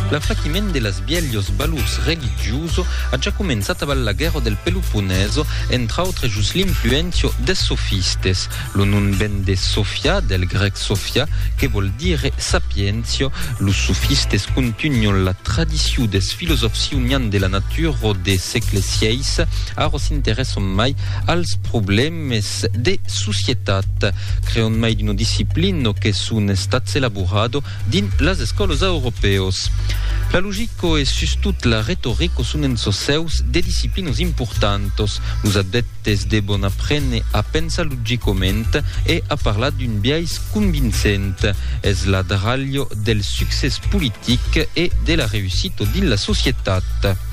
L'afraquiment de las bielhos valors religioso a ja començat aval la guèrra del Peloponeso, entre autres jos l'influéncia des sofistes. Lo nom ven de Sofia, del grèc Sophia, que vòl dire sapiéncia. Los sofistes contunhon la tradicion des filosòfs ionians de la natura de sègle vi, ara s'interèsson mai als problèmas Tèmes de societat creon mai d'una disciplino que son estats elaborado dins las escòlos auropeos. La logico e sustot la retorico son en çò seus de disciplinos importantos. Los adeptes devon aprene a pensar logicament e a parlar d'un biais convincent. Es la dralho del succès politic e de la reussito dins la societat.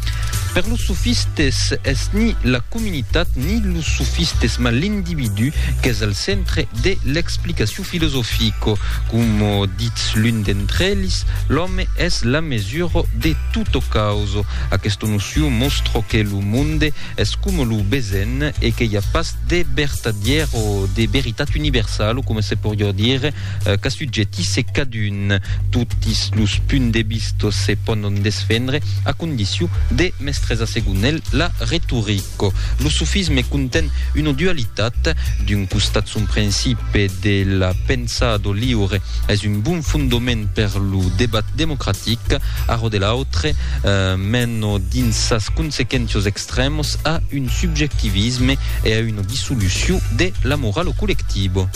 Per los sofistes es ni la comunitat ni los sofistes mas l'individu qu'es al centre de l'explicacion filosofica. Coma ditz l'un d'entre elis, l'òme es la mesura de tota causa. Aquesta nocion mòstra que lo monde es coma lo besenh e que i a pas de vertadièr o de veritat universala, coma se poriá dire, qu'assujètisse cadun. Totis los punts de vista se pònon desfendre a condicion de mestresar segon el la retorica. Lo sofisme conten una dualitat, d'un costat son principe de la pensada liure es un bon fondament per lo debat democratic, ara de l'autre mena dins sas consequéncias extrèmas a un subjectivisme e a una dissolucion de la morala collectiva.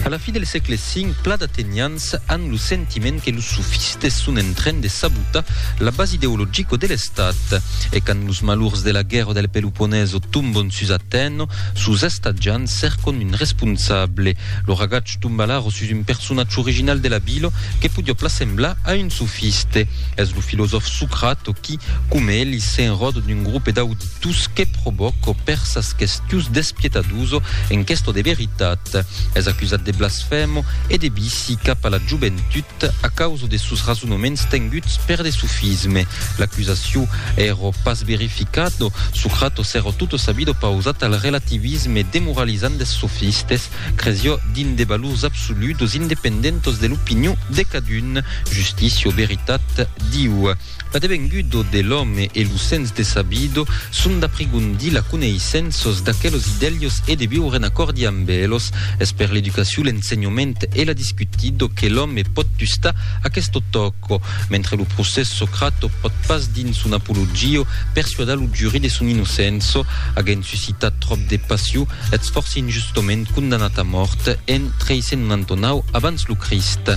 A la fi del sègle V, pla d'atenians an lo sentiment que los sofistes son en tren de sabotar la base ideologico de l'Estat. E quand los malurs de la guèrra del Peloponeso tombon sus Atèno, sos estatjants cercon un responsable. Lo ragach Tumbalaro sus un personatge original de la vila que podiá pla semblar a un sofiste. Es lo filosòf Socrate qui, coma Elis, s'enròda d'un grope d'auditus que provòca per sas questions d'espietadus en questa de veritat. Es acusat de blasfèmo e de vici cap a la joventut a causa de sos rasonaments tenguts per de sofisme. L'acusacion èra pas verificada, Socrate s'èra tota sa vida pausat al relativisme demoralizant des sofistes, Creció dins de valors absoludos independentos de l'opinion de cadun, justicia o veritat, diu, L'adevengudo de l'òme e lo sens de sabido son d'aprigondir la coneissenços d'aquelos idelhos e de viure en acòrdi amb elos. Es per l'educacion, l'ensenhament e la discutido que l'òme pòt tustar aquesto tòco, mentre lo procès Socrato pòt pas dins son Apologio persuadar lo juri de son inocença, aguent suscitat tròp de passion, Ets fòrça injustament condamnat a mòrt en 399 abans lo Crist.